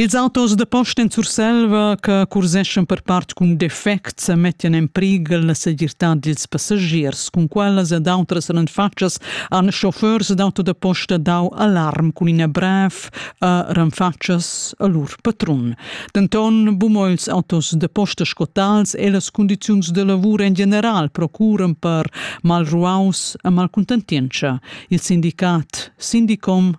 Ils autos da posta en Surselva che curseschan per part cun defect sa mettian en prighel la segirtad dils passagiers. Cun quellas ed outras renfatschas han chauffeurs d'auto da posta dau alarm cun ina brev a renfatschas a lur patrun. Denton, bumo ils autos da posta scotals e las condiziuns de lavur en general procuran per malruaus e malcontentientscha. Il sindicat Sindicom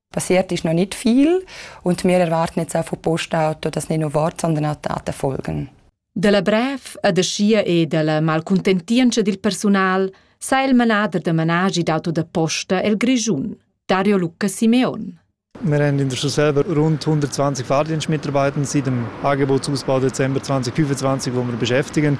passiert ist noch nicht viel und wir erwarten jetzt auch von Postauto, dass nicht nur Wort, sondern auch Taten folgen. Dalla brev e da schia e dalla malcuntentientscha dil personal sa il manader da managi d'auto da posta el Grischun, Dario Luca Simeon. Wir haben in der Schule selber rund 120 Fahrdienstmitarbeiter seit dem Angebotsausbau Dezember 2025, wo wir beschäftigen.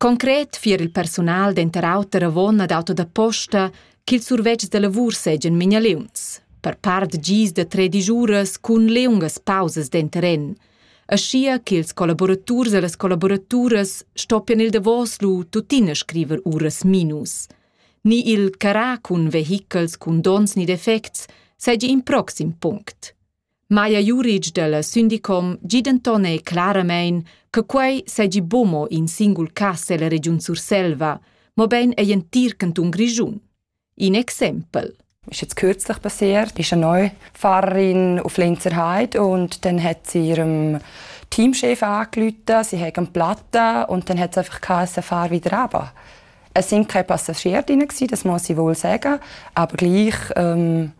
Concret fier il persunal denter auter avon ad auto da posta ch'ils survetschs da lavur seigien mignaliuns. Per part gis da tredic uras cun liungas pausas denteren, aschia ch'ils collaboraturs e las collaboraturas stoppien il davos lu tuttina scriver uras minus. Ni il carrar cun vehichels cun donns ni defects seigi in proxim punct. Maja Juric dalla Sündicom gi denton ei claramein che quei seigi buca mo in singul cass ella regiun Surselva, mobein egl entir cantun Grischun. In exempel. ist jetzt kürzlich passiert, ist eine neue Pfarrerin auf Lenzerheide und dann hat sie ihrem Teamchef angerufen, sie haben einen Platten und dann hat es einfach geheißen, fahr wieder runter. Es sind keine Passagiere drin, das muss ich wohl sagen, aber gleich ähm,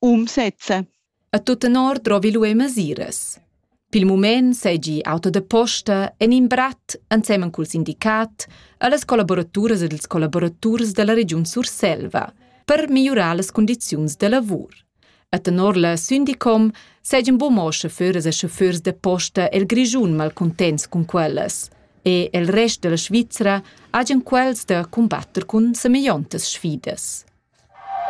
um sezze. A tut tenor drovi lué masiras. Pil mument seigi auto da posta en in brat ensemen cul sindicat allas collaboraturas ed ils collaboraturs dalla regiun Surselva per migliurar las condiziuns da lavur. A tenor la Syndicom seigien buca mo chauffeurs e chauffeurs da posta el Grischun malcontents cun quellas e el rest della Svizra hagen quels da combatter cun semegliontas sfidas.